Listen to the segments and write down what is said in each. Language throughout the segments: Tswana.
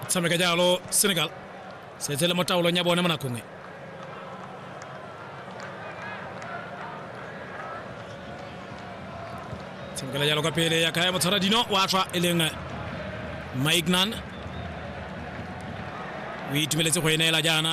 tshameka jalo senegal setse le mo taolong ya bone mo nakong e tshamekela jalo kwa pele ya kaya motshwara dino wa tswa e leng maignan o itumeletse go e neela jaana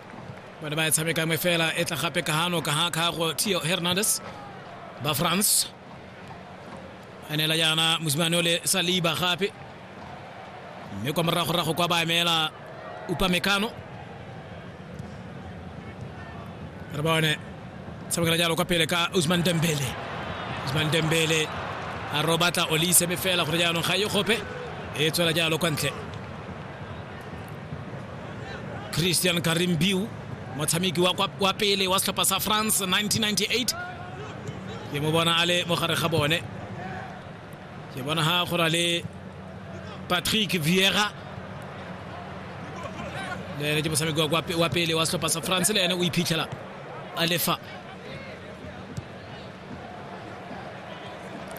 bone ba e tshameka nngwe fela e tla gape ka gano ka ga kgago tio hernandez ba france a neela jaana mosimane o le saliba gape mme kwa moragorago kwa ba emela upamekano re bone tshamekela jalo kwa pele ka usman dembele usman dembele a robatla olise me fela gore jaanong ga e gope e tswela jalo kwa ntle christian karimbiu motshameki wa, kwa- wa pele wa setlhopha sa france 1998 ke mo bona a le mo gare ga bone ke bona ga go na le patrick viera le ene ke motshameki wa kwa pe- wa pele wa setlhopha sa france le ene o iphitlhela a lefa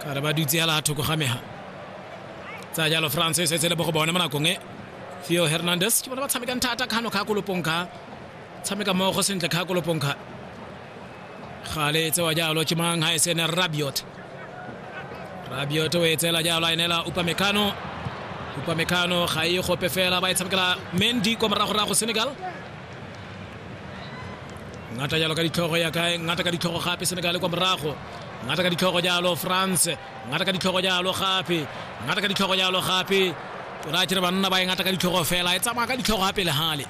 kare ba dutse ya la thoko ga mega tsa jalo france e setse le mo go bone mo nakong e theo hernandez ke bona ba tshamekang thata kgano kgakolopong kha tshameka mmogo sentle kgakolopong kha gale e tsewa jalo ke mang ga e sene rabiot rabiot o e tseela jalo a enela upamekano upamekano ga e gope fela ba e tshamekela mendi kwa moragorago senegal ngata jalo ka ditlhogo ya kae ngata ka ditlhogo gape senegal kwa morago ngata ka ditlhogo jalo france ngata ka ditlhogo jalo gape ngata ka ditlhogo jalo gape o raya tere banna ba e ngata ka ditlhogo fela e tsamaya ka ditlhogo gape le gale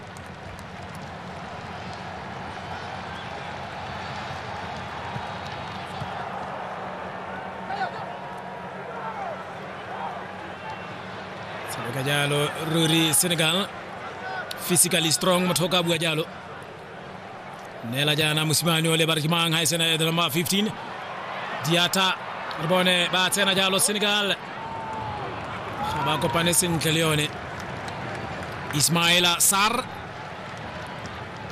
tshameka jalo ruri senegal physically strong motho o ka bua jalo nela jaana mosimane o lebare ke mang ga e sena ya number 15 diata re bone ba tsena jalo senegal ga ba kopane sentle le yone ismaela sar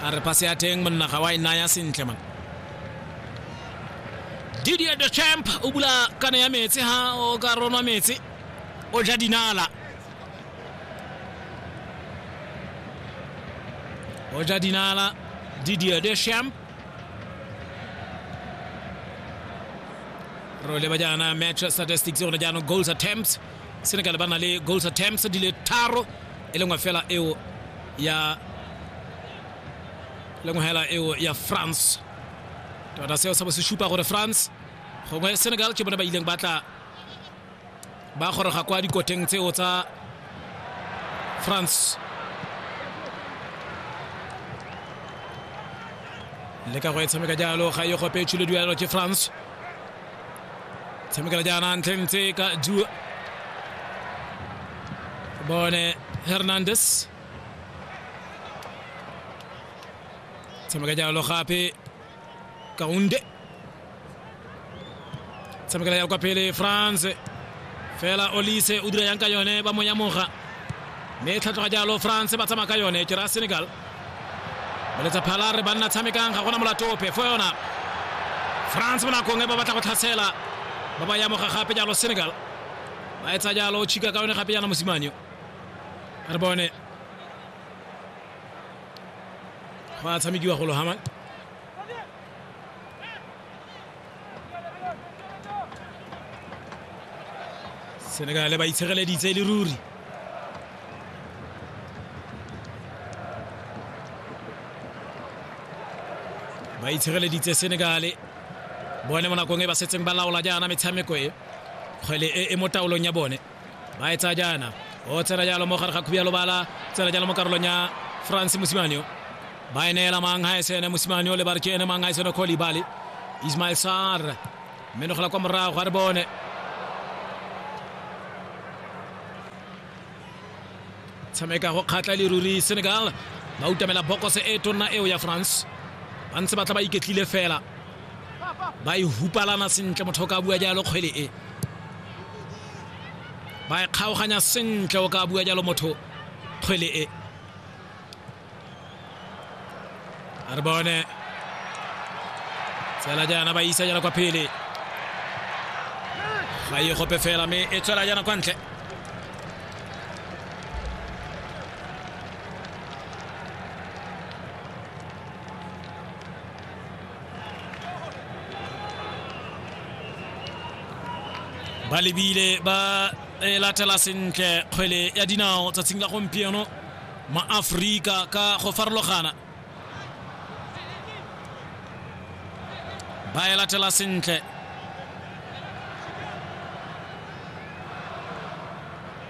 a re pase ya teng monna ga wa e naya sentle man didier de champ o bula kana ya metsi ha o ka ronwa metsi o ja dinala Roger Dinala, Didier Deschamps. Re leba jaana match statistics gone jaanong goals attempts senegal ba na le goals attempts di le tharo e lengwe fela eo ya lengwe fela eo ya france tota seo sa bo se supa gore france gongwe senegal ke bone ba ileng ba tla ba goroga kwa dikoteng tseo tsa france le ka go e tshameka jalo ga e gope tshilo duelo ke france tshamekela jaana ntlheng tse ka du bone hernandez tshameka jalo gape kaunde tshamekela ya kwa pele france fela olise o dira yang ka yone ba mo yamoga mme e tlhatlhoga jalo france ba tsamaya ka yone ke raya senegal boletsa phala re banna tshamekang ga gona molatope fo yona france mo nakong e ba batla go tlhasela ba ba yamoga gape jalo senegal ba etsa jalo chika ka yone gape jana mosimanyo re bone go a tshamekiwa golo haman senegale ba itshegeleditse e le ruri ba itshegeleditse senegale bone mo nakong e ba setseng ba laola jaana metshameko e kgwele e, e mo taolong ya bone ba e tsaya jaana o tshela jalo mo gare ga khubi ya lobala tsela jalo mo karolong ya france mosimane o ba e neela mang ga esene mosimane o le ba re ke ene mang ga esene kolibali ismail sar menogela kwa morago ga re bone tshameka go kgatla leruri senegal ba utamela bokose e tonna eo ya france ba ntse ba tla ba iketlile fela ba e hupalana sentle motho o ka bua jalo kgwele e ba e kgaoganya sentle o ka bua jalo motho kgwele e a re bone tsela jaana ba isa jana kwa phele ga e gope fela mme e tswela jana kwa ntle ba lebile ba e latela sentle kgwele ya dinao tsatsing la gompieno maaforika ka go farologana ba e latela sentle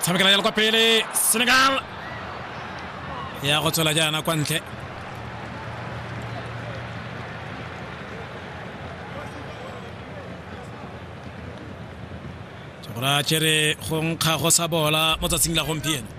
tshamekela jalo kwa pele senegal ya go tswela jaana kwa ntle Tsogora Chere go nkga go sa bola mo tsatsing la gompieno.